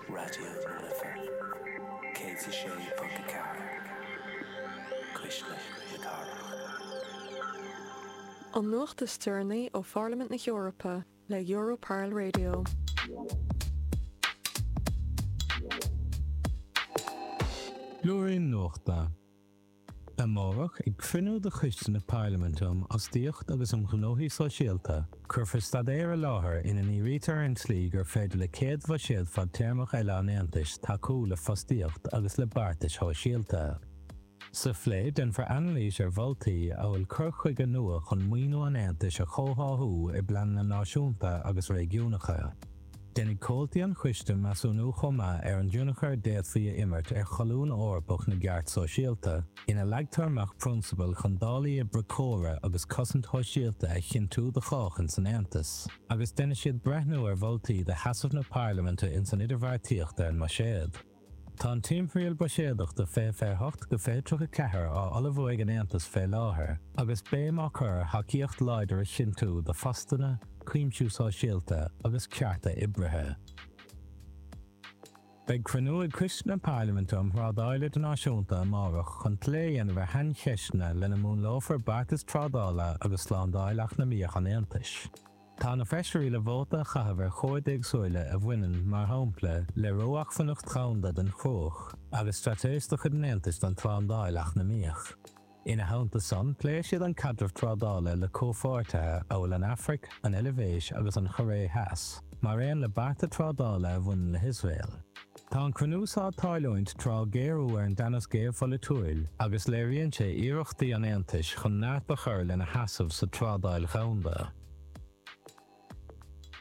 Raidió na Life 106.4 Cuisle na Cathrach. An nuacht is deireanaí ó Pharlaimint na hEorpa le Europarl Radio. Blúirín Nuachta. Amárach, ag cruinniú de Choiste na Parlaiminte um Fhostaíocht agus um Ghnóthaí Sóisialta, cuirfear staidéar i láthair ina ndírítear ar an tslí gur féidir le céad bhuiséad fadtéarmach eile an Aontais tacú le fostaíocht agus le beartais shóisialta. Sa phlé, déanfar anailís ar mholtaí amhail cur chuige nua chun maoiniú an Aontais a chomhtháthú i bpleananna náisiúnta agus réigiúnacha, Déanfaidh comhaltaí an choiste measúnú chomh maith ar an dtionchar a d'fhéadfaí a imirt ar Cholún Eorpach na gCeart Sóisialta, ina leagtar amach prionsabail chun dálaí oibre córa agus cosaint shóisialta a chinntiú do chách ins an Aontas, agus déanfaidh siad breithniú ar mholtaí do sheasamh na Parlaiminte ins an idirbheartaíocht ar an mbuiséad. Tá an timthriall buiséadach do fiche fiche hocht go fiche tríocha ceathair á ullmhú ag an Aontas fé láthair, agus béim á cur ar thacaíocht láidir a chinntiú do phostanna, cuimsiú sóisialta agus cearta oibrithe. Beidh cruinniú ag Coiste na Parlaiminte um Thrádáil Idirnáisiúnta amárach chun plé a dhéanamh ar shaincheisteanna lena múnlófar beartas trádála agus slándáil eacnamaíoch an Aontais. Tá na feisirí le vóta a chaitheamh ar chomhaid éagsúla a bhaineann, mar shampla, le ró-acmhainneacht dhomhanda don chruach agus straitéis de chuid an Aontais don tslándáil eacnamaíoch. Ina theannta san, pléifidh siad an caidreamh trádála le comhpháirtithe amhail an Afraic, an Eilbhéis agus an Choiré Theas, mar aon le bearta trádála a bhaineann le hIosrael. Tá an cruinniú so ag tarlúint tráth géarú ar an dteannas geopholaitiúil agus léiríonn sé iarrachtaí an Aontais chun neart a chur lena sheasamh sa trádáil dhomhanda.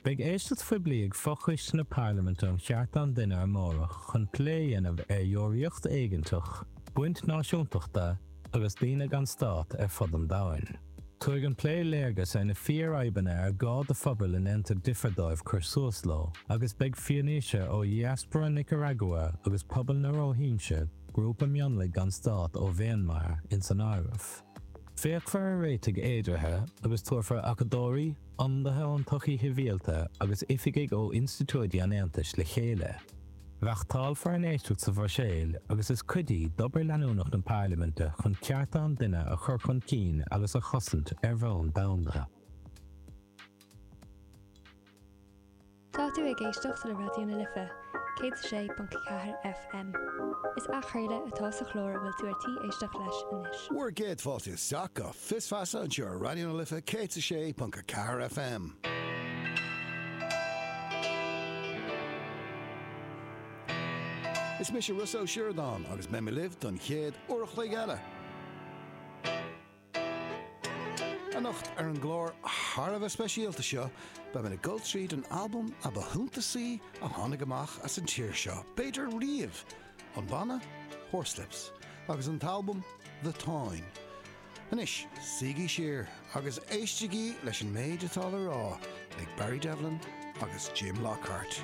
Beidh éisteacht phoiblí ag fo-choiste na Parlaiminte um Chearta an Duine amárach chun plé a dhéanamh ar dheoraíocht éigeanteach, baint náisiúntachta agus daoine gan stát ar fud an domhain. Tabharfaidh an plé léargas ar na fíorfhadhbanna ar gá do phobail a ndéantar difear dóibh cur suas leo, agus beidh fianaise ó dhiaspóra Nicearagua agus pobal na Róihinse, grúpa mionlaigh gan stát ó Mhianmar, ins an áireamh. Féachfar ar réitigh fhéideartha agus tabharfar acadóirí, ionadaithe ón tsochaí shibhialta agus oifigigh ó institiúidí an Aontais le chéile. Reachtáilfear an éisteacht sa Bhruiséil agus is cuid í d'obair leanúnach na Parlaiminte chun cearta an duine a chur chun cinn agus a chosaint ar bhonn domhanda. Tá tú ag éisteacht le Raidió na Life, 106.4 FM. Is athchraoladh atá sa chlár a bhfuil tú ar tí éisteacht leis anois. Bhur gcéad fáilte isteach, go. Fios Feasa anseo ar Raidió na Life 106.4 FM. Is mise Ros Ó Sioradáin agus beidh mé libh don chéad uair a chloig eile anocht. Ar an gclár thar a bheith speisialta seo beidh mé ag dul tríd an albam ab shuntasaí a tháinig amach as an tír seo, b'fhéidir, riamh. an banna Horslips agus an t-albam The Táin. Anois, suígí siar agus éistigí leis an méid atá le rá ag Barry Devlin agus Jim Lockhart.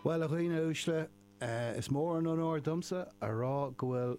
Bhuel a dhaoine uaisle, eh, is mór an onóir domsa a rá go bhfuil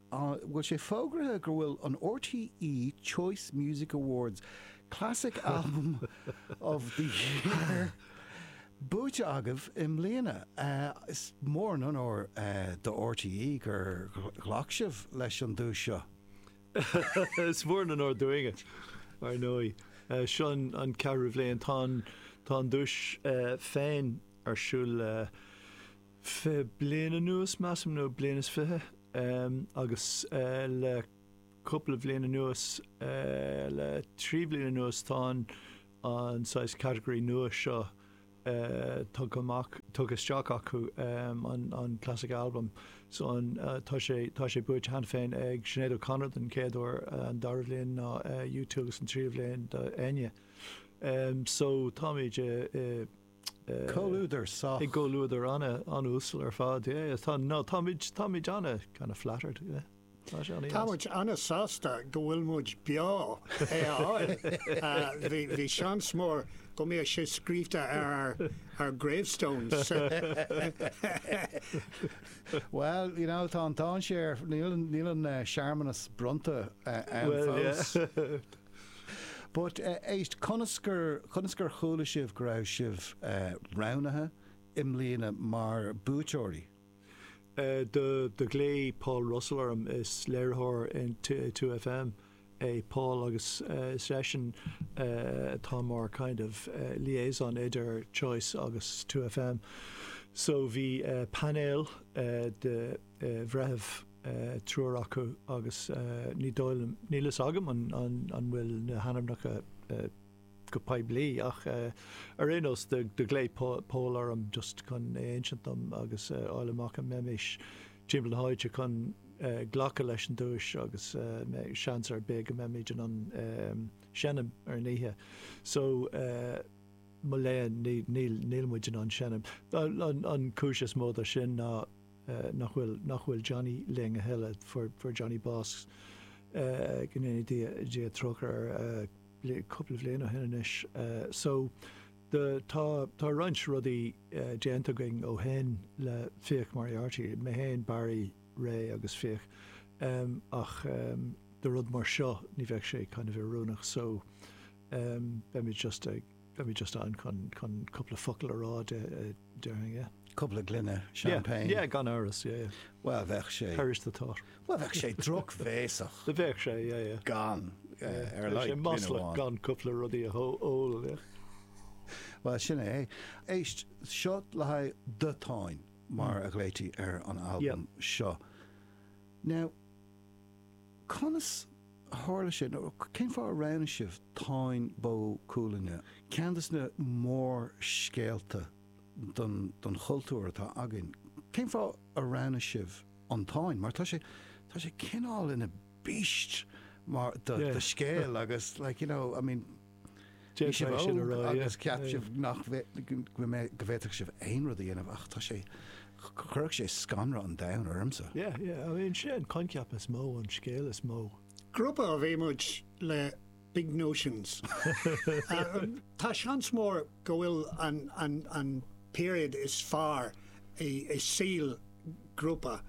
bhfuil sé fógraithe go bhfuil an RTÉ Choice Music Awards Classic Album of the Year buaite agaibh i mbliana? Is mór an onóir do RTÉ gur ghlac sibh leis an duais seo. Is mór an onóir dúinne, ar ndóigh. Seo an ceathrú bhliain. Tá an duais féin ar siúl le. fiche bliain anuas, measaim, nó bliain is fiche, agus le cúpla bhliain anuas, le trí bhliain anuas, tá an saghas category nua seo tugtha amach, tugtha isteach acu, an classic album. So an, tá sé, tá sé buaite cheana féin ag Sinéad O'Connor don chéad uair, an dara bhliain ná U2 agus an tríú bhliain d'Enya. So táimid i. Comhluadar sách. I gcomhluadar an-uasal ar fad, yeah, yeah. Tá, no, táimid, táimid ana kind of flattered, yeah. Tá sé ana-dheas. Táimid ana sásta go bhfuil muid beo é a fháil. Bhí, bhí seans mór go mbeadh sé scríobhta ar ár, ár gravestones. Well, you know, tá an dáinséar, níl an, níl an searmanas bronnta ann fós. Well, yeah. But éist, conas gur, conas gur chuala sibh go raibh sibh roghnaithe i mbliana mar buaiteoirí? Do, do ghlaoigh Paul Russell orm, is léiritheoir in two FM é Paul agus is eisean atá mar kind of liaison idir Choice agus two FM. So bhí painéal de bhreithiúna. triúr acu agus ní dóigh liom, níl fhios agam an bhfuil na hainmneacha go poiblí ach ar aon nós do ghlaoigh Pól orm just chun é a insint dom agus a fháil amach an mbeimis timpeall na háite chun glacadh leis an duais agus seans ar bith go mbeimid in ann seinm ar an oíche so mo léan níl muid in ann seinm. An cúis is mó do sin ná. nach bhfuil, nach bhfuil Johnny linn a thuilleadh, fuair, fuair Johnny bás, go ndéana Dia, Dia trócaire air, bliain, cúpla bhliain ó shin anois. So, the, tá, tá roinnt rudaí déanta againn ó shin le Fiach Moriarty, mé fhéin, Barry, Ray agus Fiach, ach do rud mar seo, ní bheadh sé kind of oiriúnach so, beimid just ag, Beimid just ann chun chun cúpla focal a rá déarfainn. Cúpla gloine champagne. Yeah, yeah, gan amhras, yeah, yeah. Bhuel, bheadh sé. Perish the thought. Bhuel, bheadh sé drochbhéasach. Bheadh sé, yeah, yeah. Gan, ar a laghad, gloine amháin. Bheadh sé maslach gan cúpla rudaí a ól, yeah. Bhuel, sin é. Éist, seo le haghaidh The Táin, mar a ghlaoití ar an albam seo. Now. Conas a tharla sin? Nó cén fáth a roghnaigh sibh Táin Bó Cúailnge, ceann des na mórscéalta don chultúr atá againn? Cén fáth a roghnaigh sibh an Táin? Mar tá sé, tá sé cineál ina beast mar, do, do scéal, agus, like, you know, I mean, Bhí sibh óg agus cheap sibh go bhféadfadh sibh aon rud a dhéanamh ach tá sé, chuirfeadh sé scanradh an domhain ormsa. Yeah, yeah, I mean, sin an coincheap is mó, an scéal is mó. Grúpa ab ea muid le, big notions. Tá seans mór. go bhfuil an period is fearr i saol grúpa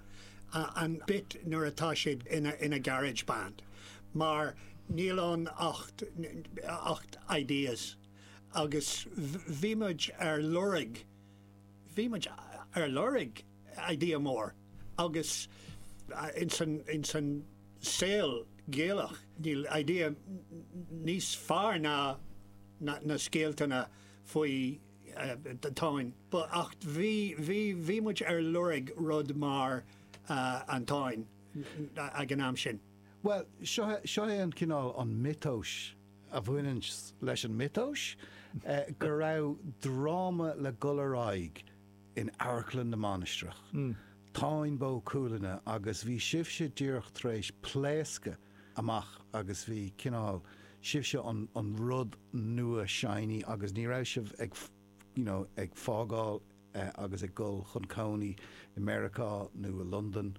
an bit nuair atá siad ina garage band mar níl ann ach ideas agus bhí muid ar lorg, bhí muid ar lorg! idea mór agus ins an saol Gaelach níl idea níos fearr ná na scéaltanna faoin Táin but ach bhí muid ar lorg rud mar an Táin ag an am sin. Bhuel, seo é an cineál an miotas a bhaineann leis an miotas go raibh dráma le dhul ar aghaidh in Amharclann na Mainistreach, Táin Bó Cuailgne agus bhí sibhse díreach tar éis pléascadh amach agus bhí cineál, sibhse an rud nua shiny agus ní raibh sibh ag you know ag fágáil agus ag dul chun cónaí i Meiriceá nó i Londain.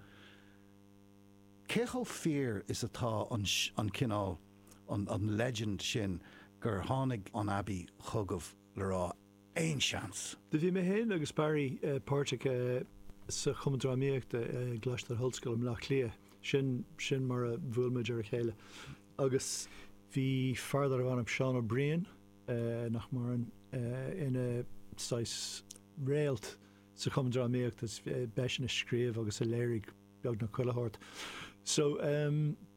Cé chomh fíor is atá an an cineál, an legend sin gur tháinig an Abbey chugaibh le rá, aon seans. Do bhí mé féin agus Barry páirteach sa Chumann Drámaíochta i gColáiste na hOllscoile i mBleá Cliath, sin sin mar a bhuail muid ar a chéile agus bhí fear darbh ainm Seán Ó Briain, nach maireann, ina saghas réalt sa Chumann Drámaíochta is b'eisean a scríobh agus a léirigh beagnach chuile shórt so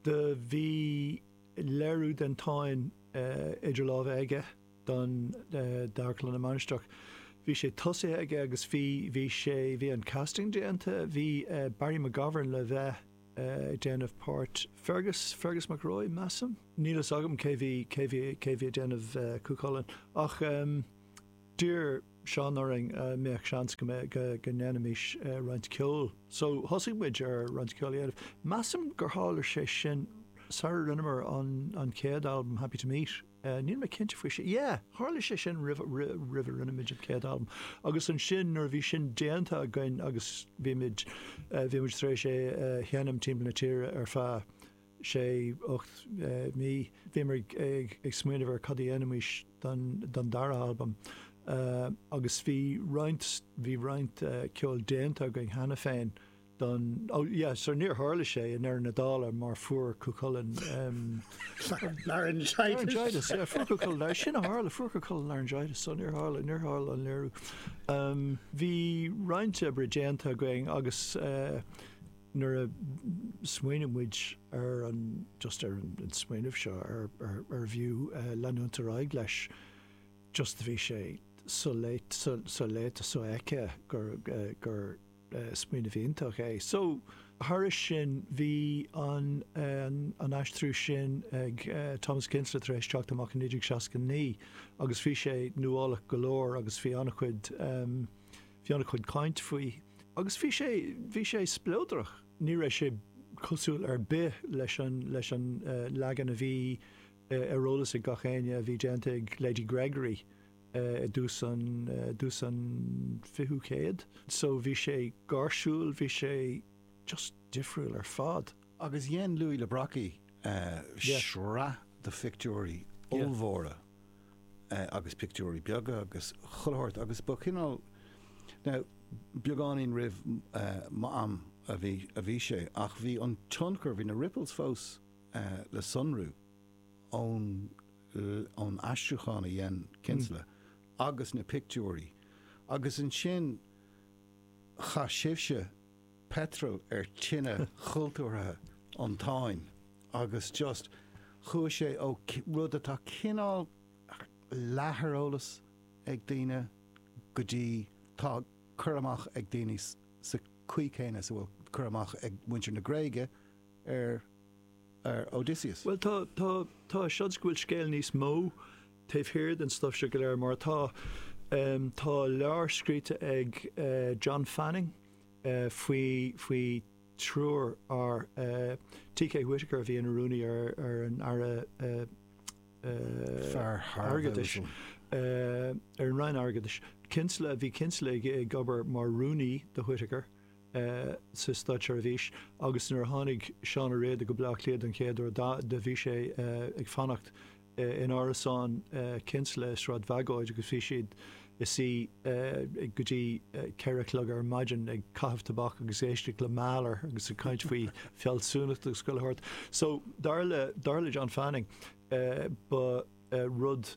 do bhí léiriú den Táin idir lámha aige don Amharclann na Mainistreach. Bhí sé tosaithe aige agus bhí, bhí sé, bhí an casting déanta, bhí Barry McGovern le bheith ag déanamh páirt Fergus, Fergus mac Róich measaim? Níl a fhios agam cé bhí, cé bhí, cé bhí ag déanamh Cú Chulainn ach d'iarr Seán orainn a' mbeadh seans go mbeadh, go, go ndéanfaimis roinnt ceol so thosaigh muid ar roinnt ceol a dhéanamh. Measaim gur tharla sé sin sara rinneamar an, an chéad albam Happy to Meet. Níl mé cinnte faoi sin. Yeah, tharla sé sin roimh a rinne muid an chéad albam. Agus ansin, nuair a bhí sin déanta againn agus bhí muid, bhí muid tar éis é a sheinm timpeall na tíre ar feadh sé, ocht mí, bhíomar ag smaoineamh ar cad a dhéanfaimis don dara albam. Agus bhí roinnt, bhí roinnt ceoil déanta againn cheana féin. don, ó, yeah, so níor tharla sé in aon chor, dála mar fuair Cú Chulainn, laryngitis. laryngitis, yeah, fuair Cú Chulainn, sin a tharla, fuair Cú Chulainn laryngitis, so níor tharla, níor tharla an léiriú. Bhí roinnt oibre déanta againn agus nuair a smaoinigh muid ar an, just ar an smaoineamh seo, ar, ar, ar bhfiú leanúint ar aghaidh leis, just bhí sé so-fheicthe, so, so-fheicthe, so-fheicthe gur, gur, Smaoineamh iontach é. OK, so, thairis sin, bhí an an aistriú sin ag Thomas Kinsella tar éis teacht amach i 1969 agus bhí sé nuálach go leor agus bhí an-chuid bhí an-chuid caint faoi agus bhí sé bhí sé spleodrach. Ní raibh sé cosúil ar bith leis an leis an leagan a bhí ar eolas ag gach éinne a bhí déanta ag Lady Gregory i dtús an dtús an 20ú céad. So bhí sé gáirsiúil, bhí sé just difriúil ar fad. Agus dhein Louis le Brocquy sraith de phictiúirí ollmhóra agus pictiúirí beaga agus chuile shórt agus ba chineál, now beagáinín roimh m'am a bhí sé ach bhí an tionchar, bhí na ripples fós le sonrú. ón aistriúchán a dhein Kinsella agus na pictiúirí agus ansin chaith sibhse peitreal ar tine chultúrtha an Táin agus just chuaigh sé ó rud atá cineál leath ar eolas ag daoine go dtí tá cur amach ag daoine sa chaoi chéanna is a bhfuil cur amach ag muintir na Gréige ar ar Odysseus. Bhuel, tá, tá, tá seans go bhfuil scéal níos mó taobh thiar den stuif seo go léir, mar atá, em, tá leabhar scríte ag, eh, John Fanning, eh, faoi, faoi thriúr fear, eh, T.K. Whitaker a bhí ina rúnaí ar, ar an, eh, ar an Roinn Airgeadais. Kinsella, bhí Kinsella ag, ag obair mar rúnaí do Whitaker. sa státseirbhís agus nuair a tháinig Seán Ó Riada go Bleá Cliath don chéad uair do bhí sé ag fanacht in árasán Kinsella i Sráid Bhagóid agus bhí siad ina suí go dtí ceithre a chlog ar maidin ag caitheamh tobac agus ag éisteacht le Mahler agus ag caint faoi fhealsúnacht agus chuile shórt. So dar le John Fanning ba rud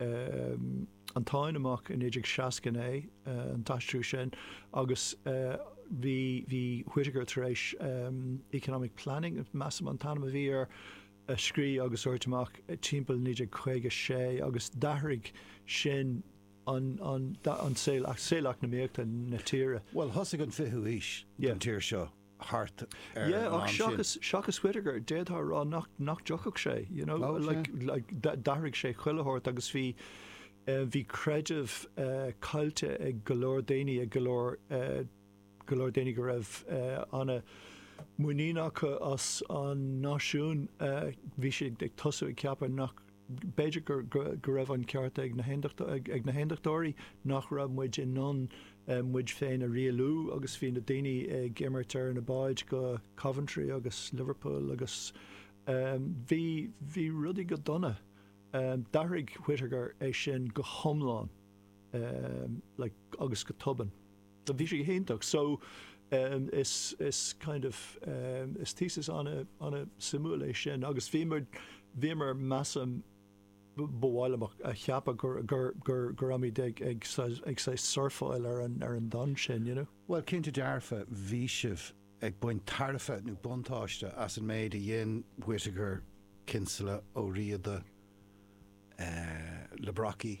an Táin amach i 1969, an t-aistriú sin, agus bhí Whitaker tar éis Economic Planning, measaim an t-ainm a bhí air, a scríobh agus a thabhairt amach timpeall 1956 agus d'athraigh sin an saol eacnamaíochta na tíre. Bhuel, thosaigh an 20ú haois don tír seo. thart ar an am sin. Yeah, ach seachas Whitaker, d'fhéadfá a rá nach dtiocfadh sé, you know, like, d'athraigh sé chuile shórt agus bhí, eh, bhí creideamh, eh, caillte ag go leor daoine, ag go leor, eh, go leor daoine go raibh, eh, ana, muinín acu as an náisiún, eh, bhí siad ag tosú ag ceapadh nach, B'fhéidir go raibh an ceart ag na hAondachtóirí nach raibh muid in ann muid féin a rialú agus bhí na daoine ag imeacht ar na báid go Coventry agus Liverpool agus bhí bhí rudaí go dona. D'athraigh Whitaker é sin go hiomlán agus go tobann. Do bhí sé go hiontach. So is kind of is thesis ana suimiúil é sin agus bhíomar bhíomar measaim, ba mhaith liom a cheapadh gur gur gur gur muid ag ag ag say surfáil ar an ar an tonn sin, you know. Bhuel cinnte dearfa bhí sibh ag baint tairbhe nó buntáiste as an méid a dhein Whittaker, Kinsella, Ó Riada, eh, le Brockie.